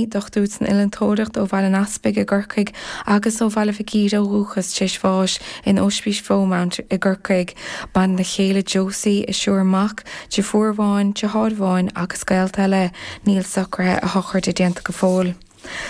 Dochtúir san Innealtóireacht ó Bhaile an Easpaig i gCorcaigh agus ó Bhaile Mhic Íre ó dhúchas, téis bháis in Ospís Mharymount i gCorcaigh. Maireann a chéile Josie a thriúr mac, deirfiúr amháin, deartháir amháin agus gaolta eile. Níl socraithe a shochraide déanta go fóill.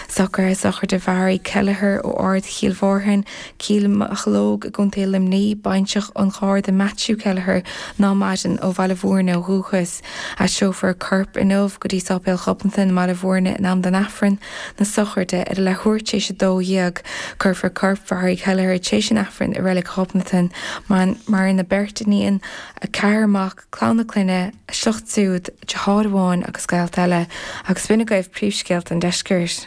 Socraithe sochraide Mhary Kelleher ó Ard Chill Mhártain, Cill Mocheallóg i gContae Luimnigh, baintreach an Gharda Matthew Kelleher ná maireann, ó Bhaile Mhúirne ó dhúchas. Aistreofar a corp inniu go dtí Sáipéal Ghobnatan i mBaile Mhúirne in am don Aifreann na sochraide ar a leathuair tréis a dó dhéag. Cuirfear corp Mhary Kelleher tréis an Aifrinn i Reilig Ghobnatan. Maireann a beirt iníon, a ceathrar mac, clann a clainne, a sliocht súd, deartháir amháin agus gaolta eile. Agus b'in agaibh príomhscéalta an Deiscirt.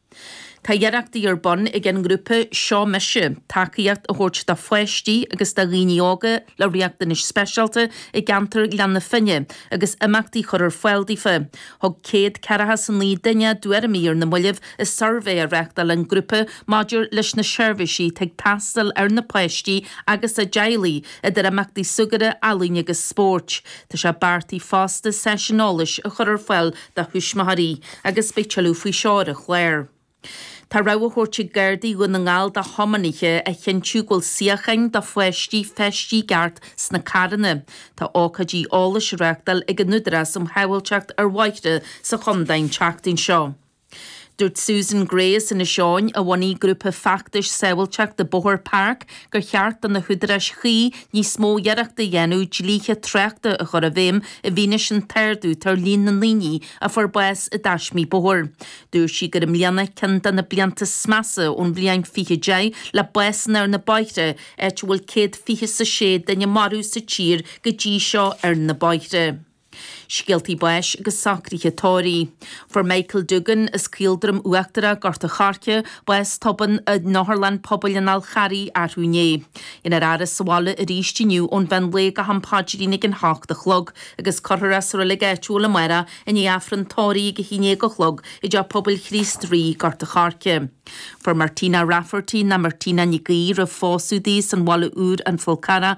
Tá iarrachtaí ar bun ag an ngrúpa Seo Mise tacaíocht a thabhairt do pháistí agus do dhaoine óga le riachtanais speisialta i gceantar Ghleann na Finne agus imeachtaí a chur ar fáil daofa. Thug céad ceathracha 's a naoi duine a dtuairimí ar na moillibh i suirbhé a reáchtáil an grúpa maidir leis na seirbhísí atá ag teastáil ar na páistí agus a dteaghlaigh, idir imeachtaí súgartha, ealaíne agus spóirt. Tá sé beartaithe fosta seisiún eolais a chur ar fáil do thuismitheoirí agus beidh tuilleadh faoi seo ar an chlár. Tá rabhadh á thabhairt ag Gardaí Dhún na nGall do thiománaithe a chinntiú go bhfuil suíocháin do pháistí feistithe i gceart sna carranna. Tá ócáidí eolais á reáchtáil ag an Údarás um Shábháilteacht ar Bhóithre sa Chondae an tseachtain seo. Dúirt Susan Gray as Inis Eoghain, a bhunaigh grúpa feachtais sábháilteachta bóthair PARC, gur cheart do na húdaráis chuí níos mó iarrachta a dhéanamh dlíthe tráchta a chur i bhfeidhm i bhfianaise an t-ardú atá ar líon na ndaoine a fuair bás i dtaismí bóthair. Dúirt sí gur i mbliana ceann de na blianta is measa ón bhliain 2010 le básanna ar na bóithre, áit a bhfuil céad fiche 's a sé duine marbh sa tír go dtí seo ar na bóithre. Scéaltaí báis agus socruithe tórraimh. Fuair Michael Doogan, as Caoldroim Uachtarach, Gort a Choirce, bás tobann in Otharlann Pobail an Fhál Charraigh arthú inné. Dhéanfar a fhaire sa bhaile arís inniú ón mhean lae go ham paidrín ag a hocht a chlog agus cuirfear é sa roilig áitiúil amárach i ndiaidh Aifreann tórraimh ag a haon déag a chlog i dteach pobail Chríost Rí, Gort a Choirce. Fuair Martina Rafferty, nó Martina Nic Aoidh, roimh phósadh di, as an Bhaile Úr, An Fál Carrach,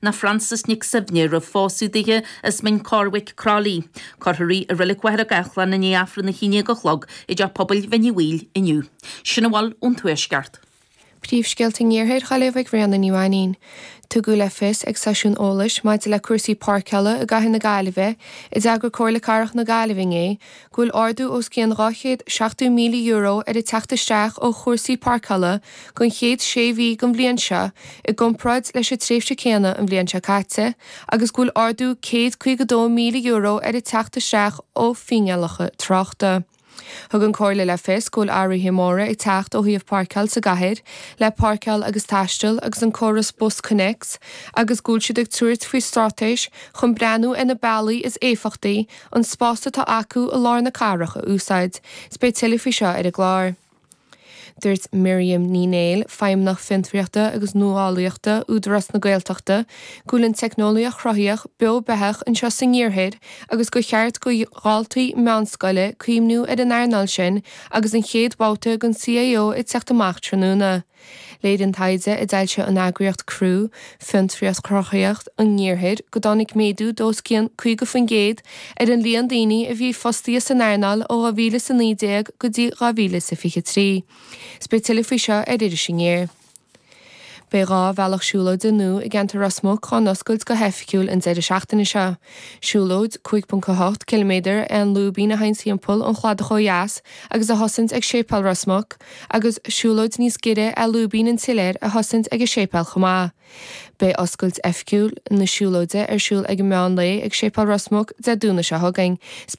nó Frances Nic Suibhne, roimh phósadh duithe, as Mín Corrbhaic, Croithlí. Cuirfear í i Roilig Mhachaire Gathlán i ndiaidh Aifreann a haon déag a chlog i dTeach Pobail Mhín Uí Bhaoill inniu. Sin a bhfuil ón Tuaisceart. Príomhscéalta an Iarthair ó Ghaillimh ag Ríona Ní Mhainnín. Tugadh le fios ag seisiún eolais maidir le cúrsaí páirceála i gCathair na Gaillimhe, a d'eagraigh Comhairle Cathrach na Gaillimhe inné, go bhfuil ardú os cionn €270,000 ar a teacht isteach ó chúrsaí páirceála don chéad sé mhí den bhliain seo i gcomparáid leis an tréimhse chéanna an bhliain seo caite agus go bhfuil ardú €152,000 ar a teacht isteach ó fhíneálacha tráchta. Thug an Comhairle le fios go bhfuil athruithe móra ag teacht ó thaobh páirceáil sa gcathair le Páirceáil agus Taisteal agus an córas BusConnects agus go bhfuil siad ag tabhairt faoi straitéis chun breathnú ar na bealaí is éifeachtaí an spás atá acu i lár na cathrach a úsáid, is beidh tuilleadh faoi seo ar an gclár. Dúirt Miriam Ní Néill, Feidhmeannach Fiontraíochta agus Nuálaíochta, Údarás na Gaeltachta, go bhfuil an teicneolaíocht chruthaíoch beo beathach anseo san Iarthar agus gur cheart do dhaltaí meánscoile cuimhniú ar an earnáil sin agus an chéad bhabhta den CAO ag teacht amach tráthnóna. Léirionn taighde a d'fhoilsigh an eagraíocht CREW, Fiontraíocht Chruthaitheacht an Iarthair go dtáinig méadú de os cionn 50% ar an líon daoine a bhí fostaithe san earnáil ó 2000 is 19 go dtí 2000 is 23. Is beidh tuilleadh faoi seo ar Iris Aniar. Beidh dhá bhealach siúlóide nua i gceantar Ros Muc á n-oscailt go hoifigiúil an deireadh seachtaine seo. Siúlóid 5.8 km é an lúibín a théann timpeall an chladach ó dheas agus a thosaíonn ag Séipéal Ros Muc agus siúlóid níos giorra é lúibín an tsiléir a thosaíonn ag an séipéal chomh maith. Beidh oscailt oifigiúil na siúlóide ar siúl ag meán lae ag Séipéal Ros Muc Dé Domhnaigh seo chugainn.